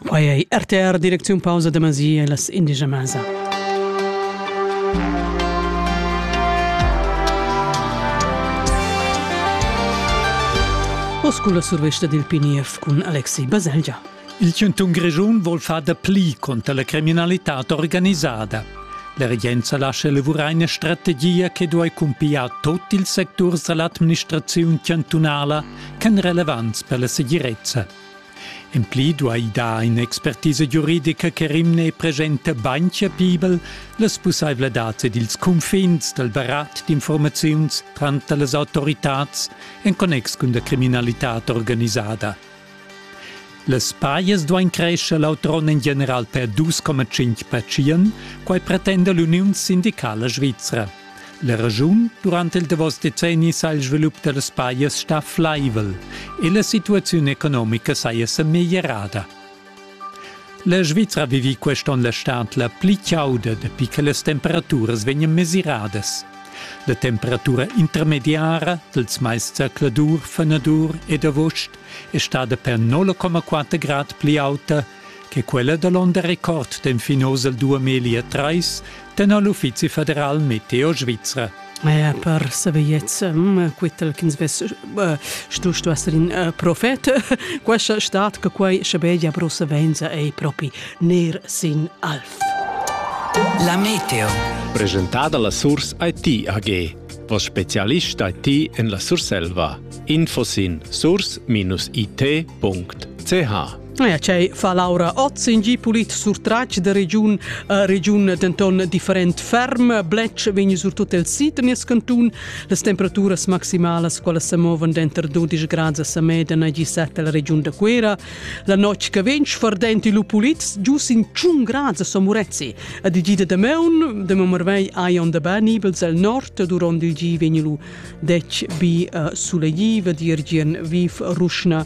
Quai è RTR direcziun pausa da Masi e las indigia Masa. Oss cun la survesta dil PNF cun Alexi Baselgia. Il Centun Grischun vuol far da pli contra la criminalità organisada. La regenza lascia elavurar una strategia che duai cumpigliare tutti i sectors dell'administrazione chantunala ch'èn relevants per la segirezza. En pli duai dar in'expertisa giuridica che rimne e presenta bain chapibel las pussaivladads ed ils cunfins dal barat d'informaziuns tranter las autoritads en connex cun la criminalitad organisada. Las pajas duain crescer l'autrone en general per 2,5 percient, quai pretenda l'Uniun sindicala svizra. La regiun durant il davos decenni sa il svilup da las pajas sta flaivel e la situaziun economica saja sa meglierada. La Svizra vivi quest'on la stad la pli chauda dapi che las temperaturas vegnan mesiradas. La temperatura intermediara dals mais zercladur, fenadur ed avust è stada per 0,4 grad pli auta che quella da l'onn da record d'enfin oz al duamillia trais tenor l'Uffizi federal meteo svizra. Eh, per saviez mm, quittel ch'ins vess eh, stu stu esser in eh, profet questa stat che quai schabegia prosa venza ei propi ner sin alf La meteo presentada la Surs IT AG vos specialist IT en la Surselva info sin surs-it.ch Ja, cei fa Laura Oz in gi pulit surtratg de regiun, uh, regiun denton different ferm, bletsch vegn surtut el sid nies cantun, las temperaturas maximalas quelle se movan denter 12 grad a Sameda e 17 la regiun de Quera. La notg che vegn fardenti lu pulit gius in 1 grad a Somurezzi. A di gida de meun, de Momervei ai on de Banibels al nord, duront il gi vegn lu 10 bi uh, suleghi, dir gien viv ruschna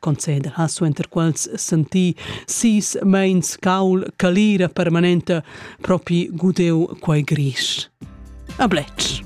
conceder ha suenter quels sentì sis meins caul calira permanenta propi gudeu quei gris. A Bletsch.